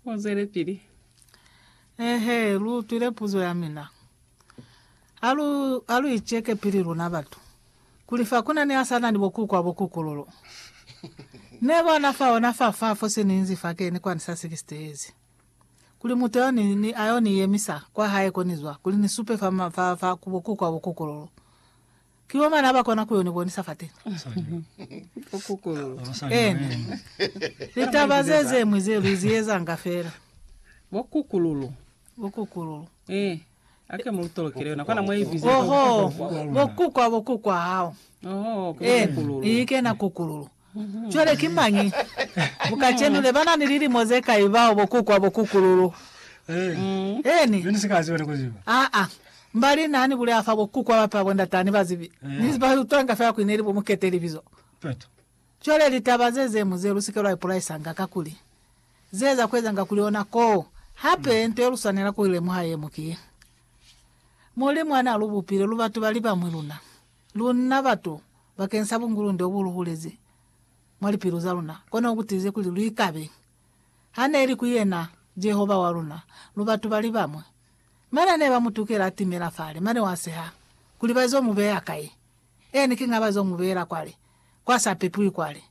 Muzelepili, Eehe, lu utwile puzo ya mina. Ha lu, ha lu iceke pili luna batu, kuli fa ku na ni a sa na ni bo kuku a bo kukululu. Ne bo na fa ona fa fa fo se ni inzi fa keni kwa ni sa 60 years. Kuli mutu yo ni, ni, a yo ni yemisa kwa hae ko ni zwa, kuli ni supe fa, fa, fa ku bo kuku a bo kukululu. Ki bo mani aba kona kuyo ni bonisa fateni. Eena. Litaba ze zeñwi ze lu zi ezanga fela. Bo kukululu. Bo kukululu. Ee. Ake mu lu tolokele yona. Kwana mwa ibiza. Ohoo. Bo kukwa bo kukwa hao. Ohoo. Ki bo kukululu. Eena. Ikena kukululu. Cwale ki mañi bo kacenu ne ba na ni lilimo ze kai bao bo kuku a bo kukululu? Eeni. Aa, mba li na ni buleha fa bo kuku a bape ba bo ndata ni bazibi, ni ba utwanga fela kuli ne li bo mukete libizo. Cwale litaba ze ze mu ze lu si ke lwa ipolaisanga, kakuli ze za ku ezanga kuli ona koo. Hape, nto ye lu swanela ku i lemuha ye mu ki ye, Mulimu ha na lu bupile lu batu ba li ba mwi luna. Luna batu, bakeng sa bungulunde obu lu bulezi mwa lipilu za luna, kono ku tiize kuli lu ikabe ha ne li ku yena Jehova wa luna, lu batu ba li bamwi. Mane ne ba mu tukela a timela fale, mane wa seha kuli ba zo mu beya kai? Eeni, kiña ba zo mu beela kwale, kwa sa pepiwi kwale.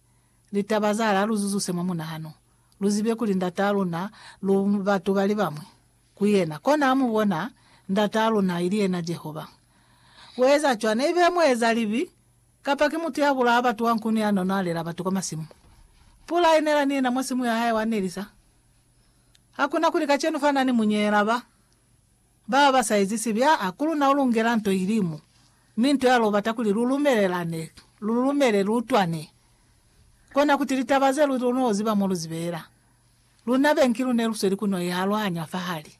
Litaba za la lu zuzuse mwa munahano, lu zibe kuli Ndataa luna lu batu ba li bamwi. ku yena, kona a mu bona Ndataa luna, ili yena Jehova. Ku eza cwana, ibe muezalibi kapa ki mutu ya bulaa batu wa nkunu ya n'o nwalela batu kwa masimu. Pula i nela ni yena mwa simu ya hae wa nelisa. Ha ku na kuli kacenu fa na ni munyeela ba baba ba sa ezi sibi, aa, ku luna u lungela nto ili mo, mi nto ya lwo bata kuli lu lumelelane, lu lumele, lu utwane, kona kuti litaba ze lu n'o ziba mo lu zi beela. Luna bengilu ne lu sweli ku no i aluhanya fa hali,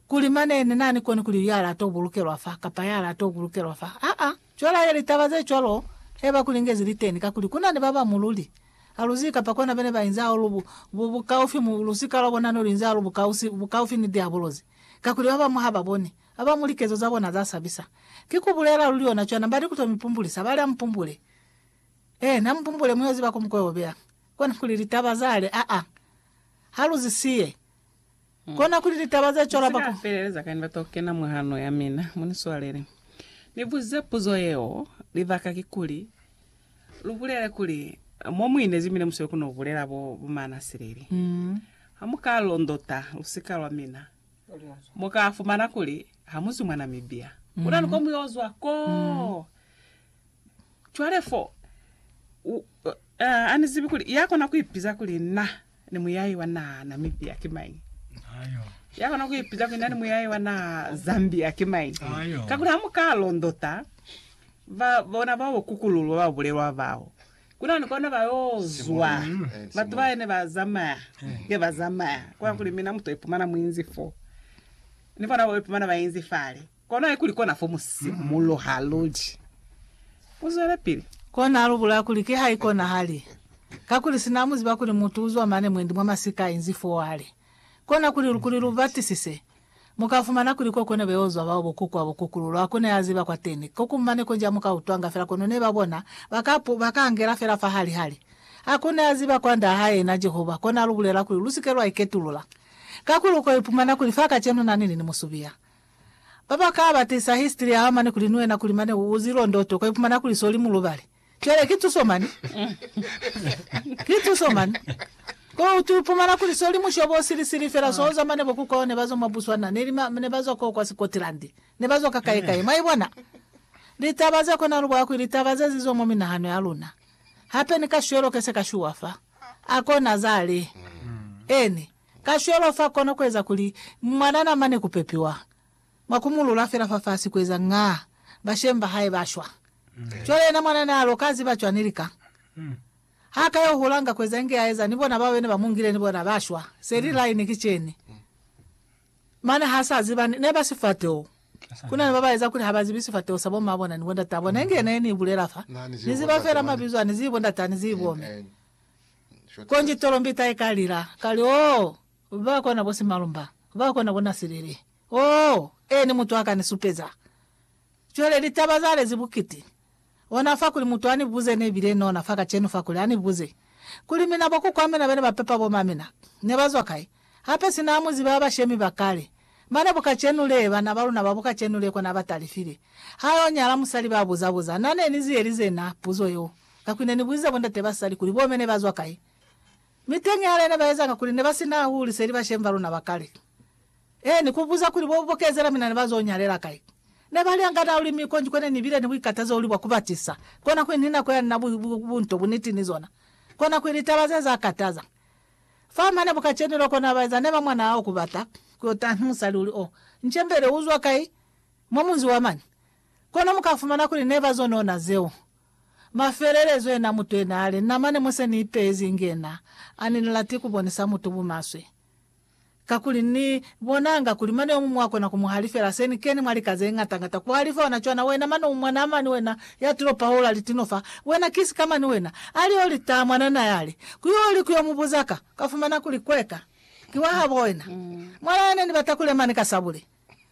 kuli mane ni nani koni kuli ya la to bulukelwa fa kapa ya la to bulukelwa fa. Aa, cwela ye litaba ze cwalo he ba ku lingezi liteni, kakuli ku na ni ba ba mu luli ha lu zibi kapa kona bene ba inzi hahulu bu, bu, bukaufi mu lusika lwa bona ne lu inzi hahulu bukausi, bukaufi ni Diabolozi, kakuli ba bañwi ha ba boni, ba ba mu likezo za bona za sabisa. Ki ku bulela luli yona cwana, ba ni ku to mi pumbulisa, ba li, Ha mu pumbule. Eena, mu pumbule, mu yo ziba ko mu ko yo beya. Kona kuli litaba zale, aa, ha lu zi siye. Kona kuli litaba ze cwalo ba ku. Feleleza kañi ba to kena mwa hano ya mina? Mu ni swalele. Ni buze puzo yeo, libaka kikuli, lu bulele kuli, mo mu inezi mi ne mu sweli ku no bulela bo, bo maanasileli. Ha mu ka londota lusika lwa mina, mu ka fumana kuli ha mu zwi mwa Namibia. Ku na ni ko mu yo zwa koo. Cwale fo, u, A ni zibi kuli ya kona ku ipiza kuli na ni muyahi wa naha Namibia ki mañi? Ya kona ku ipiza kuli na ni muyahi wa naha Zambia ki mañi? Kakuli ha mu ka londota ba bona ba bo kukululwa ba bulelwa bao, kuna ni kona ba yo zwa batu ba ne ba zamaya nge ba zamaya, kwa kuli mina mu to ipumana mu inzi fo, ni bona ba ipumana ba inzi fale. Kono haikuli kona fo mu si mulo ha luli. U zwelepili. Kona lu bulaya kuli ki haikonahali, kakuli sina mu ziba kuli mutu uzwa mane mwendi mwa masika inzi foo hali kona kuli lu kuli lu batisise, mu ka fumana kuli ko kone beo zwa bao bokuku abo kukulu lwa kone ya ziba kwateni. Ko ku mane konji amu ka utwanga fela kono ne ba bona ba ka pu, ba ka angela fela fa hali hali. Ha kone ya ziba kwa Nda hae yena Jehova, kona lu bulela kuli lu si ke lwa iketulula, kakuli u ko ipumana kuli fa kacenu nani lini mu subia. Ba ba ka batisa history ya mane kuli ni wena kuli mane u uzi londo to ka ipumana kuli so li mulubali. Cwale ki tuso mane. Ki tuso mane. Ko u tu ipumana kuli so li mushobo o sili sili fela so oza mane bo ku kwao ne ba zwa mwa Botswana neli ma ne ba zwa ko kwa Scotland. Ne ba zwa ka kai kai. Mwa ibona? Litaba ze kona lu bwa kwi litaba ze zi zwa mwa minahano ya luna. Hape ni kashwelo ke se ka shuwa fa. A kona zale. Eni. Kacwalo fa kona kueza kuli mwana na mane kupepiwa mwa kumulula fela fafasi kueza nga bashemi bahae ba shwa. Cwale yena mwana na lo ka ziba cwani lika ha ka yo hula nga kueza inge aeza ni bona bao bene ba mungile ni bona ba shwa? Seli laine ki ceni. Mane ha sa ziba ni neba sifateho. Kuna ni baba eza kuli ha ba zibi sifateho sa bo ma bona ni bo ndataa bona inge ne ni bulela fa. Ni ziba fela mabizo ani zibo ndataa ni zibo me. Konji tolombita ika lila, kali, Oh, ba kona bo simalumba, ba kona bo nasilili. Oh, Eni mutu aka ni supeza. Cwale litaba za lezi bukiti. Ona fa kuli mutu ani buze, ne bile nona fa kacenu fa kuli, ani buze, kuli, Mina bo kukwa mina bene ba pepa bo mamina, ne ba zwa kai? Hape sina amu ziba ya bashemi ba kale. Mane bu kacenu lee, bana ba luna ba bu kacenu lee kona ba talifile. Ha yo nyala musali ba buza buza. Na ne ni ziyelize na puzo yeo. Ka kuli ne ni buzize bo ndate ba sali kuli bo me ne ba zwa kai. Mi teñi hali ne ba ezanga kuli ne ba si na hahulu seli bashemi ba luna ba kale. Eeni, ku buza kuli bo bo kezela mina ne ba zo nyalela kai. Ne ba li angana hahulu mi konji ko ne ni bile ni buikatazo hahulu bwa ku batisa. Kona kuli ni nako ya nina bu, bu, bu, bunto, buniti ni zona. Kona kuli litaba ze za kataza. Fa mane bu kacenu loko na ba eza ne ba mwana hao ku bata ku yo taha ni musali uli, Oh, Ncembele, u zwa kai? Mwa munzi wa mani? Kono mu ka fumana kuli ne ba zo nona zeo. Mafelelezo yena mutu yena ali, Na mane mo se ni ipezi inge yena, ani ni lati ku bonisa mutu bumaswe. Kakuli Ni bonanga kuli mane yomuñwi wa kona ku mu halifela. Se ni keni mwa lika zeñata ngata ku halifa ona cwana. Wena mane u mwanaa mani wena ya tilo paola litino fa, wena ki sika mani wena. Ali yo li taa mwanana ya li, Ku yo li ku yo mu buza ka, ka fumana kuli kweka ki wa habo wena. Mwalaa ne ni bata ku le mani ka sabule.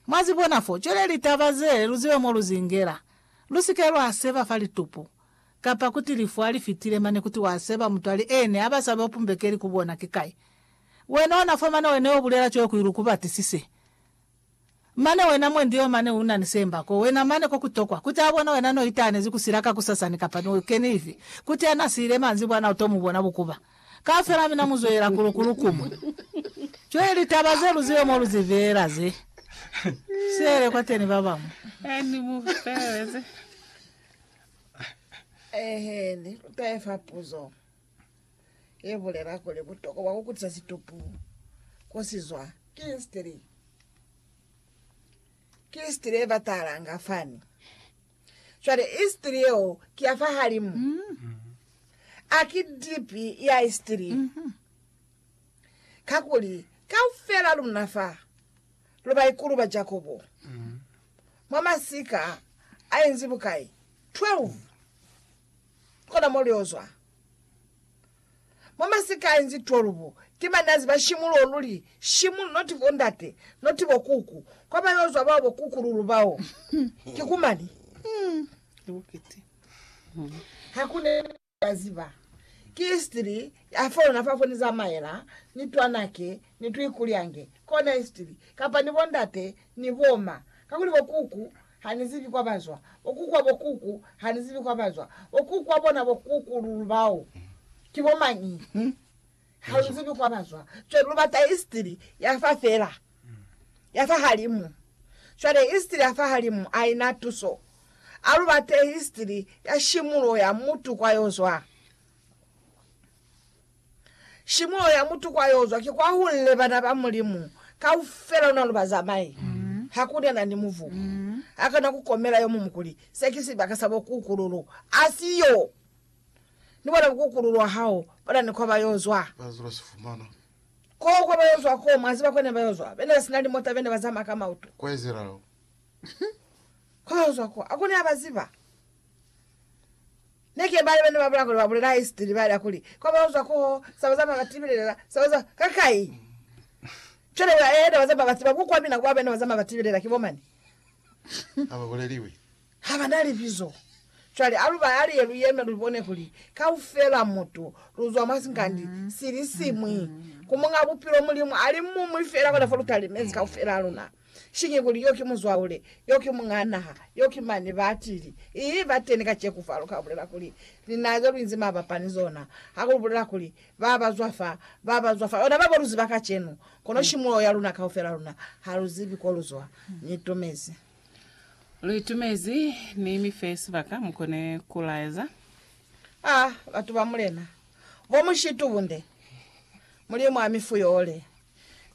Mwa zi bona fo, cwale litaba ze lu ziba mo lu zi ingela. Lu si ke lwa seba fa litupu, kapa kuti lifu ha li fitile mane kuti wa seba mutwali e ne a ba sabe upumbekeli ku bona ki kai. Wena ona fo mane wena yo bulela cweo kui lu ku batisise. Mane wena mwendi yo mane una ni semba ko wena mane ko ku tokwa kuti a bona wena no itanezi ku sila kakusasani kapa no keni ifi, kuti a na siile manzibwana u to mu bona bukuba. Kaufela mina mu zwelela ku lu kulukuma. Cwale litaba ze lu zibe mo lu zi beela ze. Sele kwateni ba bamwi. Eni mu feleleze. Eheni, lu tahe fa puzo ye bulela kuli butokwa bwa ku kutisa situpu ko si zwa ki history. Ki history ye ba talanga fani. Cwale, istiri yeo ki ya fahalimu. A ki dipi ya istiri. Kakuli, kaufela luna fa, lu baikulu ba Jakobo, mwa masika a inzi bukai? 12. Kona mo lu yo zwa. Mwa masikai nzi 12, ki banazi ba shimu luo luli, shimu, not bo ndate, not bo kuku, kwa ba yo zwa bao bo kuku lulu bao. Ki ku mani? Ha ku ne ba ziba. Ki history ya fo luna fa fo ni zamaela, ni twanake, ni tuikulyange. Kona history. Kapa ni bo ndate, ni bo ma. Kakuli bo kuku, Ha ni zibi kwa bazwa. Bo kuku wa bo kuku, ha ni zibi kwa bazwa. Bo kuku wa bona bo kuku lulu bao ki bo mañi? Ha lu zibi kwa bazwa. Cwale lu bata istiri ya fa fela, ya fa halimu. Cwale istiri ya fa halimu aina tuso. A lu bate istiri ya shimulo ya mutu kwa yo zwa. Shimo ya mutu kwa yozwa ki kwa hunle bana ba Mulimu kaufela una luba zamai. Haku ni nani muvu a kona ku komela yo mumu kuli, Se ki sibaka sa bukukululu. Asiyo! Ni bona bukukululu wa hao bona ni kwa ba yozwa. Ko kwa ba yozwa ko, mwa ziba ko ne ba yozwa? Bene ba sina limota, bene ba zamaya ka mautu. Kwa ba yozwa ko, a ko ne a ba ziba. Ne ke bali bane ba bula kuli ba bulela history ba lia kuli kwa ba uzwa ko saba za ba tibilela saba za ka kai chole ba eheda ba za ba tsiba ku kwa mina kwa bena ba za ba tibilela ki bomani ha ba boleliwi ha ba na libizo chwale alu ba ali ye lu yeme lu bone kuli kaufela mutu lu zwa mwa sinkandi sili simwi ku munga bupilo mulimu ali mumwi fela kona fo lu talimezi kaufela luna. Sinye kuli, Yo ki muzwaule, yo ki muñaa naha, yo ki mani batili. Ii, bateni kaceku fa luka bulela kuli, Linaa ze luinzi mabapa ni zona, ha ku bulela kuli, Ba ba zwa fa, ba ba zwa fa. Ona babo lu ziba kacenu, kono shimuloho ya luna kaufela luna, ha lu zibi ko lu zwa. Ni itumezi. Lu itumezi, Ni mi fe sibaka mu kone ku laeza. A, batu ba Mulena, bo mushitubunde! Mulimu a mi fuyoole.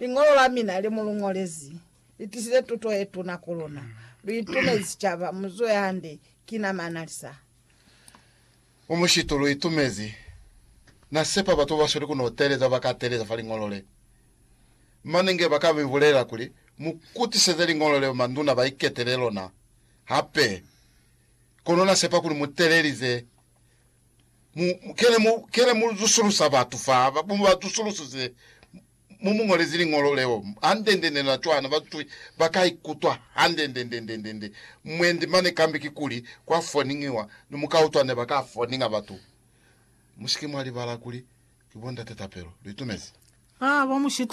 Liñolo la mina le mu lu ñolezi li tisize tuto ye tuna ku luna. Lu itumezi sicaba. Mu zuhe hande. Ki na manalisa. Mu mushitu lu itumezi. Na sepa batu ba sweli ku no teeleza ba ka teeleza fa liñolo le. Mane nge ba ka mi bulelela kuli, Mu kutiseze liñolo leo manduna ba iketele lona hape. Kono na sepa kuli mu teelelize. Mu, kele mu, kele mu zusulusa batu fa, ba, mu ba zusulusise, mu mu ngolezi liñolo leo, handendende na cwana, ba zwi, ba ka ikutwa handendendendendende. Mwendi mane kambe kikuli kwa foningiwa, ni mu ka utwa ne ba ka foninga batu. Mu si ke mwa libala kuli ki bo Ndate Tapelo. Lu itumezi? Ba, ba mu shita.